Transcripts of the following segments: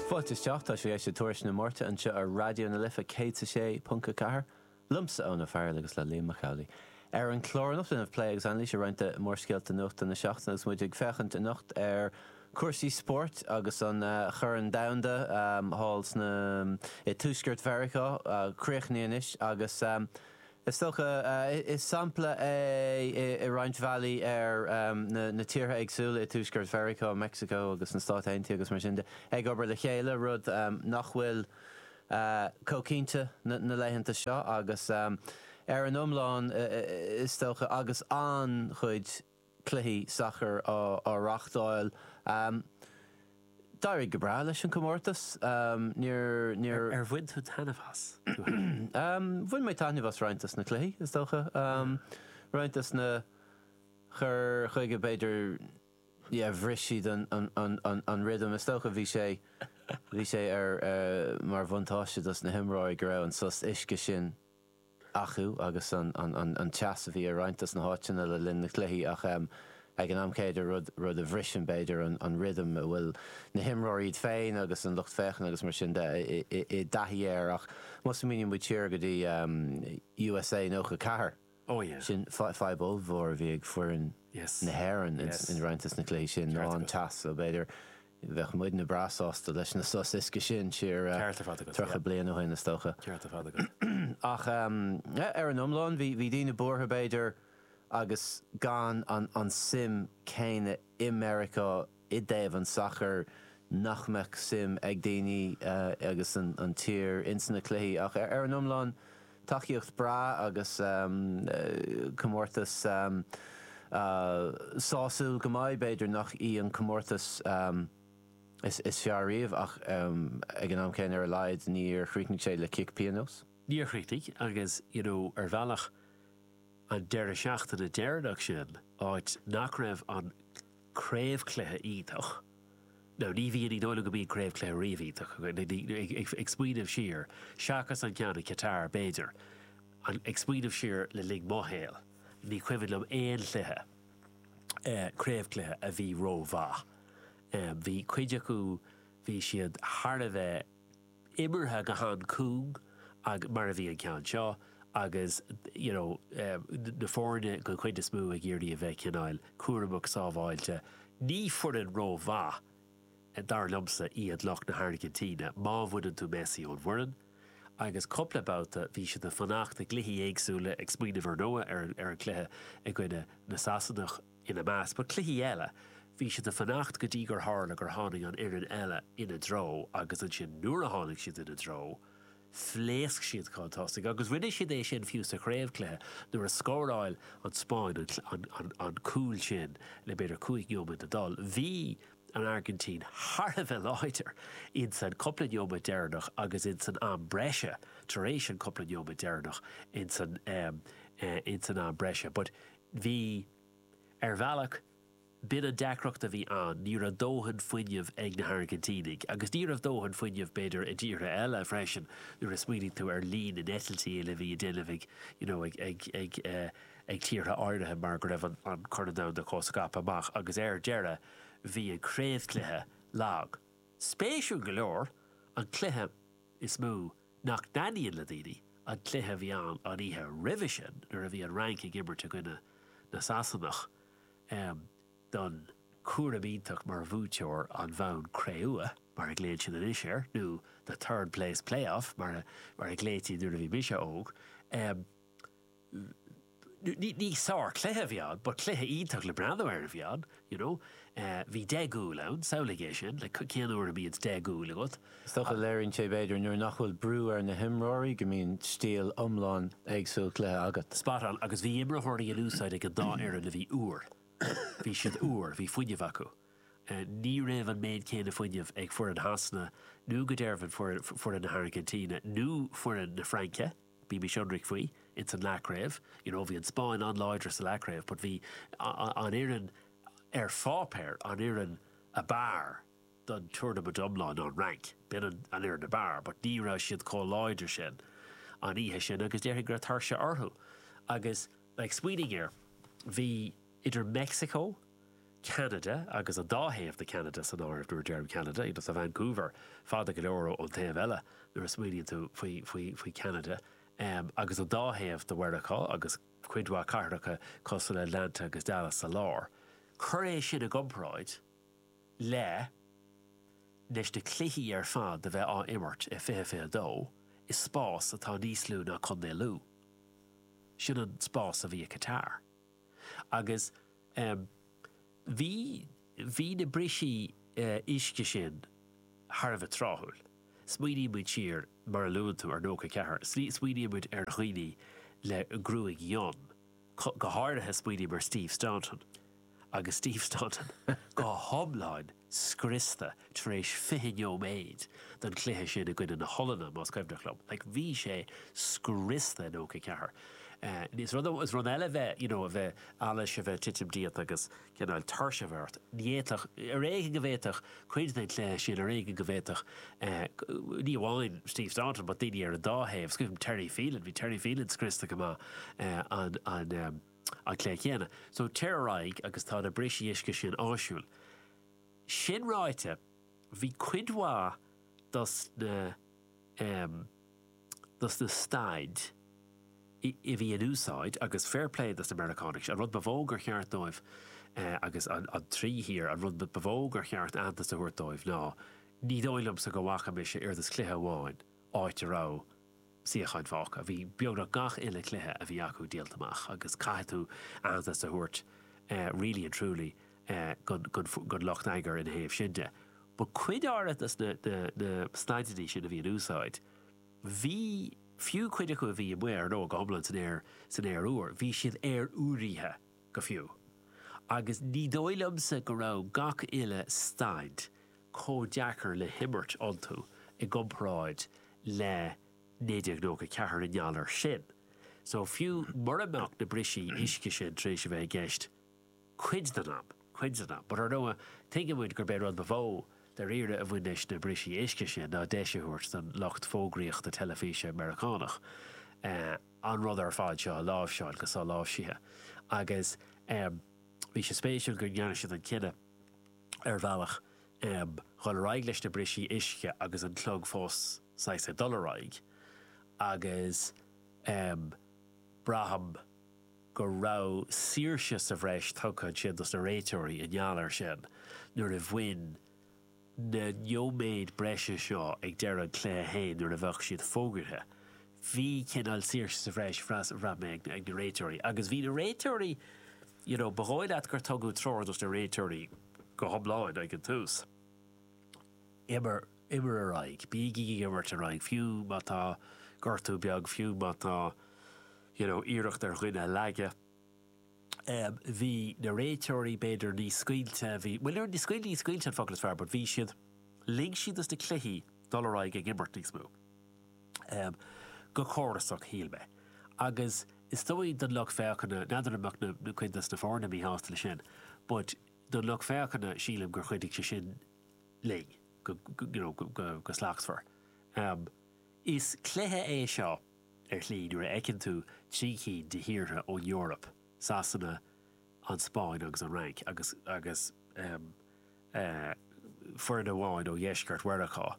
Fáilte isteach, tá sibh ag éisteacht le Tuairisc na Máirte anseo ar Raidió na Life 106.4, liomsa Eoin Ó Fearghail agus le Liam Mac Amhlaigh. Ar an chlár anocht déanfaimid plé agus anailís ar roinnt de mhórscéalta nuachta na seachtaine agus muid ag féachaint anocht ar cúrsaí spóirt agus an Chorn Domhanda thall sna i Tuaisceart Mheiriceá críochnaithe anois agus Is dócha is sampla é i roinnt bhealaí ar na tíortha éagsúla i Tuaisceart Mheiriceá, Meicsiceo agus na Stáit Aontaithe agus mar sin de, ag obair le chéile, rud nach bhfuil chomh cinnte na laethanta seo agus ar an iomlán is dócha agus an-chuid. cluichí sacair á reáchtáil. D'éirigh go breá leis an gcomórtas. Ar bhain tú taitneamh as? Bhain mé taitneamh as roinnt dos na cluichí, is dócha. Roinnt dos na cur chuige, b'fhéidir, yeah, bhris siad an rhythm. Is dócha bhí sé, bhí sé ar, mar bhuntáiste dos na himreoirí go raibh an sos uisce sin acu agus an teas a bhí i roinnt dos na háiteanna le linn na cluichí ach ag an am céanna rud a bhriseann b'fhéidir an rhythm a bhfuil na himreoirí iad féin agus an lucht féachana agus mar sin de i dtaithí air ach má smaoiníonn muid siar go dtí usa 94 sin fadhb ollmhór a bhí ag foireann na hÉireann in roinnt dos na cluichí sin ná an teas so b'fhéidir Bheadh muidne breá sásta leis na sos uisce sin siar Ceart ar fad agat, tríocha yeah. bliain ó shin, is dócha. Ceart ar fad agat. Ach eh, ar an iomlán, bhí, bhí daoine buartha, b'fhéidir, agus gan an, an suim céanna i Meiriceá i dtaobh an tsacair, nach mbeadh suim ag daoine eh, as an, an tír insa na cluichí. Ach ar, ar an iomlán. Tacaíocht breá agus comórtas sásúil go maith. B'fhéidir nach í an comórtas is fearr riamh ach ag an am céanna ar a laghad níor chríochnaigh sé le cic pionóis. Níor chríochnaigh agus you know ar bhealach an deireadh seachtaine deireanach sin áit nach raibh an. craobhcluiche iontach, nó ní bhíonn, ní dóigh liom go mbíonn craobhcluiche riamh iontach, ag smaoineamh siar, seachas an ceann i Qatar b'fhéidir, ag smaoineamh siar le linn mo shaol, ní cuimhin liom aon chluiche, craobhcluiche a bhí ró-mhaith. Bhí cuid acu, bhí siad thar a bheith. imeartha go han cúng agus, mar a bhí an ceann seo, agus you know na foirne den chuid is mó ag iarraidh a bheith cineáil cúramach sábháilte. Ní foireann ró mhaith, dar liomsa, iad lucht na hAirgintíne, má bhaineann tú Messi ón bhfoireann. Agus cupla babhta bhí siad ag fanacht i gcluichí éagsúla, ag smaoineamh ar ndóigh ar an cluiche i gcoinne na Sasanach, ina measc. But cluichí eile. Bhí siad a fanacht go dtí gur tharla gur tháinig an fhoireann eile ina dtreo agus ansin nuair a tháinig siad ina dtreo, phléasc siad chun tosaigh agus rinne siad é sin fiú sa chraobhchluiche nuair a scóráil an Spáinn an cúl sin le b'fhéidir cúig neomat a dul. Bhí an Airgintín thar a bheith láidir in san cúpla neomat deireanach agus in san am breise tar éis an cúpla neomat deireanach in san am breise Bhí, ar bhealach, b'in an deacracht a bhí ann, ní raibh dóthain fuinneamh ag na hAirgintínigh. Agus ní raibh dóthain fuinneamh, b'fhéidir, i dtíortha eile freisin, nuair a smaoinigh tú ar líon na n-eitiltí a bhí a déanamh ag, you know, ag, ag, ag, ag tíortha áirithe mar go raibh an Corn Domhanda chomh scaipthe amach. Agus ar deireadh, bhí an craobhchluiche lag. Spéisiúil go leor, an cluiche is mó nach dtaitníonn le daoine, an cluiche a bhí ann an oíche roimhe sin nuair a bhí an Fhrainc ag imirt i gcoinne na Sasanach don chú- gradam iontach mar bhuaiteoir an bhonn cré-umha, mar a ghlaonn siad anois air, nó the third place play-off mar a ghlaoití nuair a bhí mise óg. Ní sár cluiche a bhí ann, but cluiche iontach le breathnú air a bhí ann, you know. Bhí deich gcúl ann, samhlaigh é sin, like cén uair a mbíonns deich gcúl agat? Is dócha léiríonn sé b'fhéidir nuair nach bhfuil brú ar na himreoirí go mbíonn stíl iomlán éagsúil cluiche agat. Spot on, agus bhí imreoirí in úsáid ag an dá fhoireann a bhí úr. Bhí siad úr, bhí fuinneamh acu. Ní raibh an méid céanna fuinneamh ag foireann Shasana nó go dearbh foireann na hAirgintíne nó foireann na Fraince. Bímís ionraic faoi, ins an leathchraobh, you know bhí an Spáinn an-láidir sa leathchraobh but bhí an fhoireann ar pháipéar, an fhoireann a b'fhearr den tournament iomlán ná an Fhrainc. B'in an an fhoireann a b'fhearr but ní raibh siad chomh láidir sin an oíche sin agus déarfainn go raibh tuirse orthu agus like smaoinigh air, bhí, idir Meicsiceo, Ceanada agus an dá thaobh de Cheanada san áireamh nuair a deirim Ceanada, i ndáiríre tá Vancouver fada go leor ón taobh eile nuair a smaoiníonn tú faoi faoi faoi Cheanada em agus an dá thaobh de Mheiriceá agus cuid mhaith cathracha cosúil le Atlanta agus Dallas sa lár. Cuir é sin i gcomparáid le leis na cluichí ar fad a bheith á imirt i fiche fiche dó i spás atá níos lú ná Contae Lú. Sin an spás a bhí i Qatar. agus, em, bhí, bhí na bristí, eh, uisce sin thar a bheith tráthúil. Smaoiníonn muid siar, mar a luann tú, ar nócha ceathair, smaoiníonn muid ar dhaoine le gruaig fhionn, go háirithe smaoiním ar Steve Staunton, agus Steve Staunton go hiomlán, scriosta tar éis fiche neoméid den chluiche sin i gcoinne na hOllainne, más cuimhin liom. Like, bhí sé scriosta i nócha ceathair. Is rud é, is rud eile bheith, you know, a bheith allas a bheith ag titim díot agus cineál tuirse a bheith ort. Ní fhéadfadh, ar éigin go bhféadfadh cuid den chluiche sin, ar éigin go bhféadfadh, ní amháin Steve Staunton but daoine ar an dá thaobh, is cuimhin liom Terry Phelan, bhí Terry Phelan scriosta go maith an, an, an, an cluiche céanna. So téir ar aghaidh agus tá na brisí uisce sin áisiúil. Sin ráite, bhí cuid mhaith dos na em. dos na staidí a bhí in úsáid agus fair play dos na Meiriceánaigh, an rud ba mhó gur cheart dóibh eh agus an an trí thír, an rud ba mhó gur cheart aitheantas a thabhairt dóibh ná, ní dóigh liomsa go bhfaca mise oiread is cluiche amháin áit a raibh, suíocháin fágtha. Bhí beagnach gach uile chluiche a bhí acu díolta amach agus caithfidh tú aitheantas a thabhairt really and truly don lucht eagair ina thaobh sin de. But cuid áirithe de na staideannaí sin a bhí in úsáid, bhí, fiú cuid acu a bhí amuigh ar an fhód go hiomlán san aer, san aer úr, bhí siad aeroiriúnaithe go fiú. Agus ní dóigh liomsa go raibh gach uile staid, chomh deacair le himirt iontu i gcomparáid le 1994 i ngeall air sin. So, fiú mura mbeadh na brisí uisce sin tar éis a bheith i gceist cuid den am, cuid den am. But ar ndóigh, tuigeann muid gurb é an rud ba mhó, dairíre, a bhain leis na brisí uisce sin ná deis a thabhairt don lucht fógraíochta teilifíse Meiriceánach an rud ar fad seo a láimhseáil go soláimhsithe. Agus bhí sé spéisiúil go ndearna siad an cinneadh, ar bhealach, em, dhul ar aghaidh leis na brisí uisce agus an clog fós saghas ag dul ar aghaidh agus, em, braithim go raibh saoirse sa bhreis tugtha ansin dos na réiteoirí i ngeall air sin nuair a bhain na neoméid breise seo ag deireadh an chluiche féin nuair a bheadh siad fógraithe. Bhí cineál saoirse sa bhreis, bhraith mé, ag na réiteoirí agus bhí na réiteoirí, you know, ba dhóigh leat gur tugadh treoir dos na réiteoirí go hiomlán ag an tús, imir, imir ar aghaidh, bígí ag imirt ar aghaidh, fiú má tá gortú beag, fiú má tá, you know, iarracht ar dhuine a leagadh. Um, bhí na réiteoirí b'fhéidir níos scaoilte, bhí, bhuel, níor, scaoilte, scaoilte an focal is fearr, but bhí siad, lig siad dos na cluichí dul ar aghaidh ag imirt níos mó. go córasach, shíl mé. Agus is dóigh don lucht féachana, n'fheadar an mbeadh cuid dos na foirne míshásta le sin, but don lucht féachana, sílim gur chuidigh sé sin linn, go, you know, go slachtmhar. Is cluiche é seo, ar shlí, nuair a fheiceann tú trí cinn de thíortha ón Eoraip, Sasana, an Spáinn agus an Fhrainc agus agus foireann amháin ó dheisceart Mheiriceá.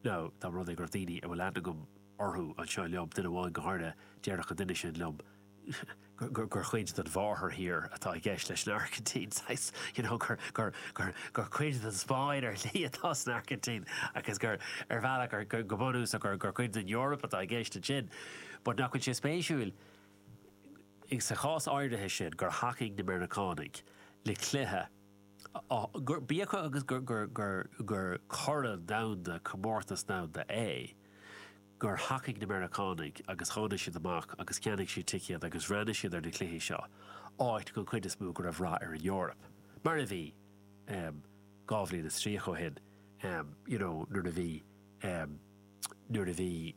Nó dá mba rud é go raibh daoine a bhfuil aithne agam orthu anseo liom, duine amháin go háirithe, déarfadh an duine sin liom gur cuid den mháthairthír atá i gceist leis an Airgintín, saghas, you know, gur gur gur gur cuid den Spáinn ar shlí atá sna hAirgintínigh agus gur ar bhealach gur go bunúsach gur gur cuid den Eoraip atá i gceist ansin but nach bhfuil sé spéisiúil sa chás áirithe sin, gur thacaigh na Meiriceánaigh le cluiche, b'fhiú dóibh agus gur Corn Domhanda, comórtas domhanda é, gur thacaigh na Meiriceánaigh agus tháinig siad amach agus cheannaigh siad ticéad agus bhreathnaigh siad ar na cluichí seo, áit, den chuid is mó, go raibh rath ar an Eoraip. Mar a bhí, dhá bhliain is tríocha ó shin, you know, nuair a bhí. nuair a bhí,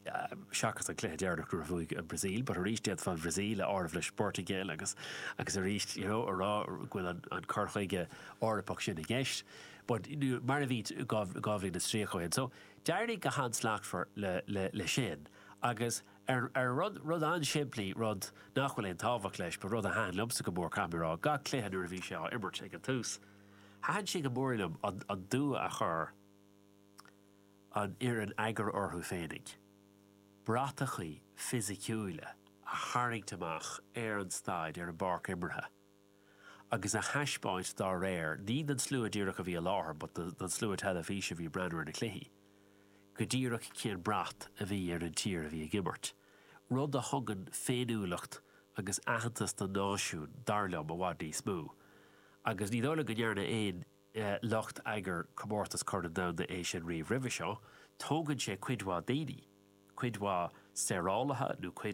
seachas an cluiche deireanach nuair a bhuaigh an Bhrasaíl, but arís d'fhéadfá an Bhrasaíl a áireamh leis an bPortaingéil agus, agus arís, you know, a rá go bhfuil an, an cur chuige Eorpach sin i gceist. But mar a bhí dhá, dhá bhliain is tríocha ó shin. So, d'éirigh go han-slachtmhar le, le, le sin agus ar, ar rud, rud an-simplí, rud nach bhfuil aon tábhacht leis but rud a thaitin liomsa go mór, caithfidh mé a rá, gach cluiche nuair a bhí sé á imirt ag an tús, thaitin sé go mór liom an, an dua a chuir, an fhoireann eagair orthu féinig, bratacha fisiciúila a tharraingt amach ar an staid, ar an bpáirc imeartha, agus a thaispeáint dá réir, ní don slua díreach a bhí i láthair but don slua teilifíse a bhí ag breathnú ar na cluichí, go díreach cén brat a bhí ar an tír a bhí ag imirt. Rud a thugann féiniúlacht agus aitheantas don náisiún, dar liom, i bhfad níos mó. Agus ní dóigh liom go ndearna aon. lucht eagair Comórtas Chorn an Domhain é sin riamh roimhe seo, tógann sé cuid mhaith daoine, cuid mhaith saorálaithe nó.